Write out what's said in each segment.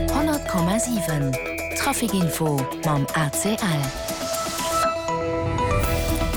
100,7 Trafic Info mam ACL.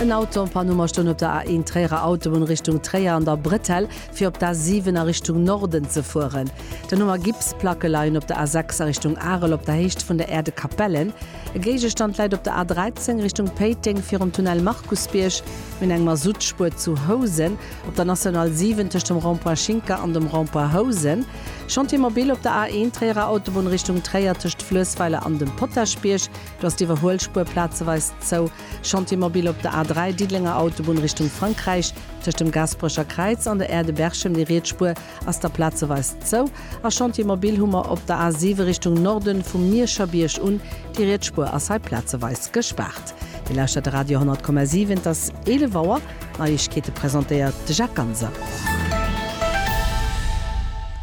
En Auto en Panne um a stoung op der A1 Tréierer Autobunn Richtung Tréier an der Bretelle, fir op d'A7 a Richtung Norden ze fueren. Den Numm a Gipsplacke leien op der A6 a Richtung Arel op der Héicht vun der Aire de Capellen. E Géigestand läit op der A13 Richtung Péiteng virum Tunnel Markusbierg. Mir hunn eng Masuttspuer zu Housen Op der National 7 tëscht dem Rond-point Schinker an dem Rond-point Housen, Chantier mobile op der A1 Tréierer Autobunn Richtung Tréier tëscht Fluessweiler an dem Potaschbierg, do ass d'Iwwerhuelspuer plazeweis zou, Chantier mobile op der A3 Diddelenger Autobunn Richtung Frankräich tëscht dem Gaasperecher Kräiz an der Aire de Berchem, déi riets Spuer ass da plazeweis zou a Chantier Mobil hu mer op der A 7 Richtung Norden, vum Mierscher Bierg un. Déi riets Spuer ass hei plazeweis gespaart. Dir lauschtert de Radio 10,7, et ass 11 Auer. D'Neiegkeete presentéiert de Jacques Ganser.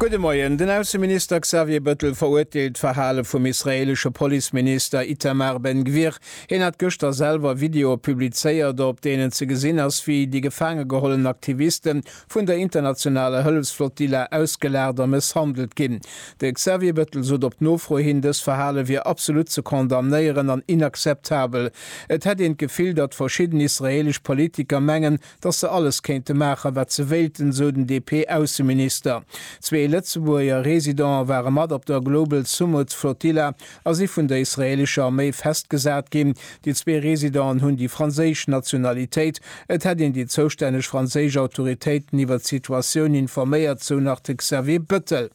Gudde Moien. Den Ausseminister Xavier Bëttel verurteelt d'Verhale vum israeelesche Policeminister Itamar Ben Gvir. Hien hat gëschter selwer Videoe publizéiert, op deenen ze gesinn ass, wéi déi gefaange gehollen Aktivisten vun der internationaler Hëllefsflottilla ausgelagert a mësshandelt ginn. De Xavier Bettel sot op Nofro hin, dës Verhale wier absolut ze condamnéieren an inakzeptabel. Et hätt een d'Gefill, datt verschidden israeelesch Politiker mengen, datt se alles kéinte maachen, wat se wéilten, sou den DP-Ausseminister. Zwee Lëtzebuerger Residenten ware mat op der Global Sumud Flotilla a si vun der israeelescher Arméi festgesat ginn. Déi zwee Residenten hunn déi franséisch Nationalitéit. Et hätt een déi zoustänneg franséisch Autoritéiten iwwert d'Situatioun informéiert, sou nach de Xavier Bëttel.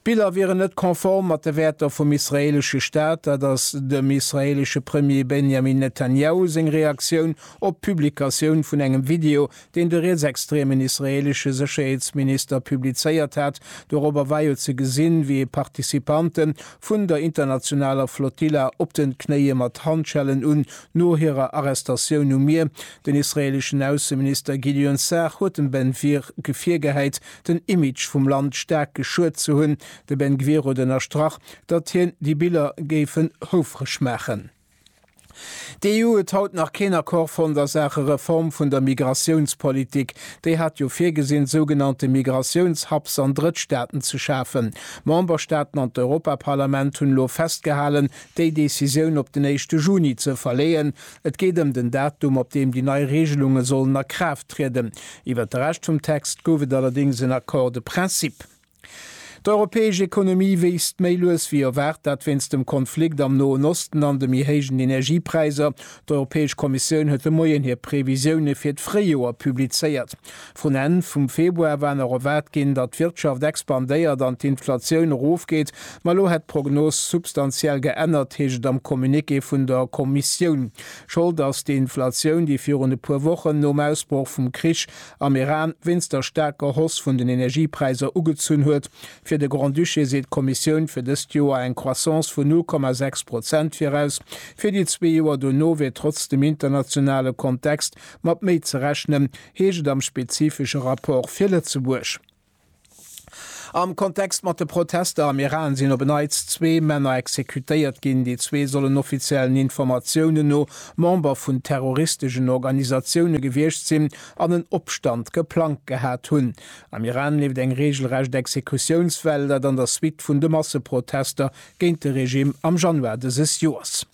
D'Biller wieren net konform mat de Wäerter vum israeelesche Staat. Dat ass dem israeelesche Premier Benjamin Netanjahu seng Reaktioun op d'Publikatioun vun engem Video deen de rietsextremen israeelesche Sécherheetsminister publizéiert hat. Dorobber war jo ze gesinn, wéi e Participante vun der internationaler Flotilla op den Knéie mat Handschellen un, no hirer Arrestatioun um Mier. Den israeeleschen Ausseminister Gideon Sa'ar huet dem Ben Gvir virgehäit, den Image vum Land staark geschuet ze hunn. De Ben Gvir huet ënnerstrach, datt hien déi Biller géifen houfreg maachen. D'EU huet haut nach keen Accord fonnt a Saache Reform vun der Migratiounspolitik. Déi hat jo virgesinn, sougenannte Migratiouns-Hubs an Drëttstaaten ze schafen. D'Memberstaaten an d'Europaparlament hunn elo festgehalen, déi Decisioun op den éischte Juni ze verleeën. Et geet ëm den Datum, op deem déi nei Reegelunge sollen a Kraaft trieden. Iwwert de Rescht vum Text gouf et allerdéngs en Accord de principe. D'europäesch Ekonomie wiisst méi lues wéi erwaart, dat wéinst dem Konflikt am Noen Osten an de méi héijen Energiepräiser. D'Europäesch Kommissioun huet de Moien hir Previsioune fir d'Fréijoer publizéiert. Vun Enn vum Februar war nach erwaart ginn, datt d'Wirtschaft expandéiert an d'Inflatioun erofgeet, ma elo hätt d'Prognos substantiell geännert, heescht et am Communiqué vun der Kommissioun. Schold ass d'Inflatioun, déi virun e puer Wochen nom Ausbroch vum Krich am Iran wéinst der staarker Hoss vun den Energiepräisser ugezunn huet. Fir de Grand-Duché seet d'Kommissioun fir dëst Joer eng Croissance vun 0,6 Prozent viraus. Fir déi zwee Joer dono wier trotz dem internationale Kontext mat méi ze rechnen, heescht et am spezifesche Rapport fir Lëtzebuerg. Am Kontext mat de Protester am Iran sinn op en Neits zwee Männer exekutéiert ginn. Déi zwee sollen offiziellen Informatiounen no Member vun terroristegen Organisatioune gewiescht sinn an en Opstand geplangt gehat hunn. Am Iran leeft eng reegelrecht Exekutiounswell, dat an der Suite vun de Masseprotester géint de Regime am Januar dëses Joers.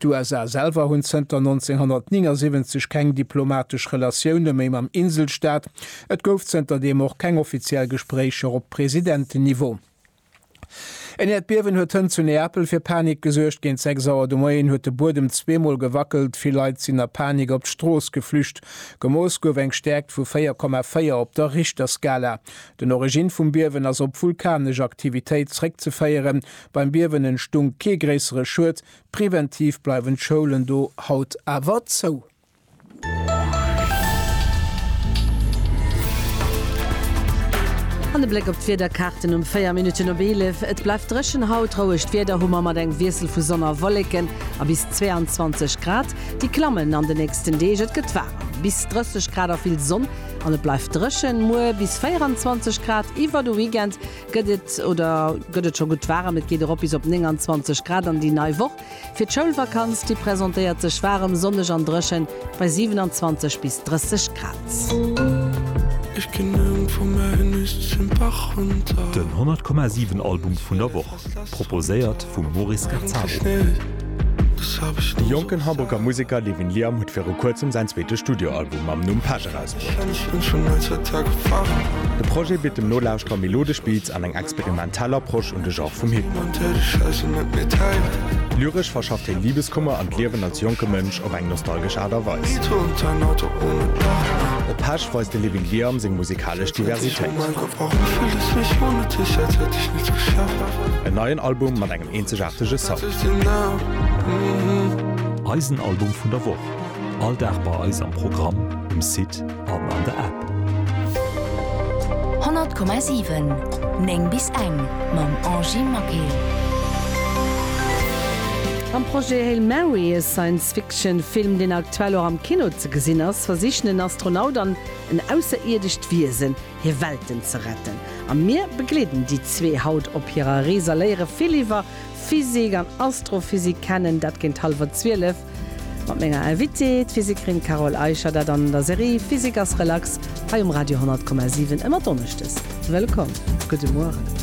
D'USA selwer hunn zënter 1979 keng diplomatesch Relatioune méi mam Inselstaat. Et gouf zënter deem och keng offiziell Gespréicher op Presidenten-Niveau. En Äerdbiewen huet hënt zu Neapel fir Panik gesuergt. Géint 6 Auer de Moien huet de Buedem zweemol gewackelt. Vill Leit sinn a Panik op d'Strooss geflücht. Gemooss gouf eng Stäerkt vu 4,4 op der Richterskala. Den Origine vum Biewen ass op vulkanesch Aktivitéit zréckzeféieren. Beim Biewen entstung kee gréissere Schued. Preventiv bleiwen d'Schoulen do haut awer zou. An e Bléck op d'Wiederkaarten um 4 Minutten op 11, Et bleift dréchen haut. Rouegt Wieder hu mer mat engem Wiessel vu Sonn a Wolleken a bis 22 Grad. Déi klammen an de nächsten Deeg, et gëtt waarem, bis 30 Grad a vill Sonn an et bleift dréchen. Muer bis 24 Grad iwwer de Weekend. Gëtt et oder gëtt et scho gutt waarem? Et geet erop bis op 29 Grad an déi nei Woch. Fir d'Schoulvakanz, déi presentéiert sech waarem, sonneg an dréchen bei 27 bis 30 Grad. Den 100,7 Album vun der Woch, proposéiert vum Maurice Gazzaro. De jonken Hamburger Museker Levin Liam huet viru kuerzem säin zweete Studioalbum mam Numm Pesch erausbruecht. De Projet bitt dem Nolauschterer melodesch Beats an eng experimentell Approche un de Genre vum Hip-Hop. Lyresch verschafft hien Libeskummer an d'Liewen als jonke Mënsch op eng nostalgesch Aart a Weis. Op Pesch weist de Living Liam seng musikalesch Diversitéit. En neien Album mat engem eenzegaartege Sound. Eisen Album vun der Woch. All Dag bei eis am Programm, um Site an an der App. 100,7 9 bis eng mam Angy Maquet. Am Projet Hail Mary, e Science-Fiction-Film, deen aktuell och am Kino ze gesinn ass, versichen en Astronaut an en ausserierdescht Wiesen, hir Welten ze retten. A mir begleeden déi zwee haut op hirer Rees a léiere vill iwwer Physik an Astrophysik kennen. Dat géint hallwer zwielef. Mat menger Invitée, d'Physikerin Carole Eicher, dat an der Serie Physik ass relax hei um Radio 10,7 ëmmer donneschdes. Wëllkomm! Gudde Mueren!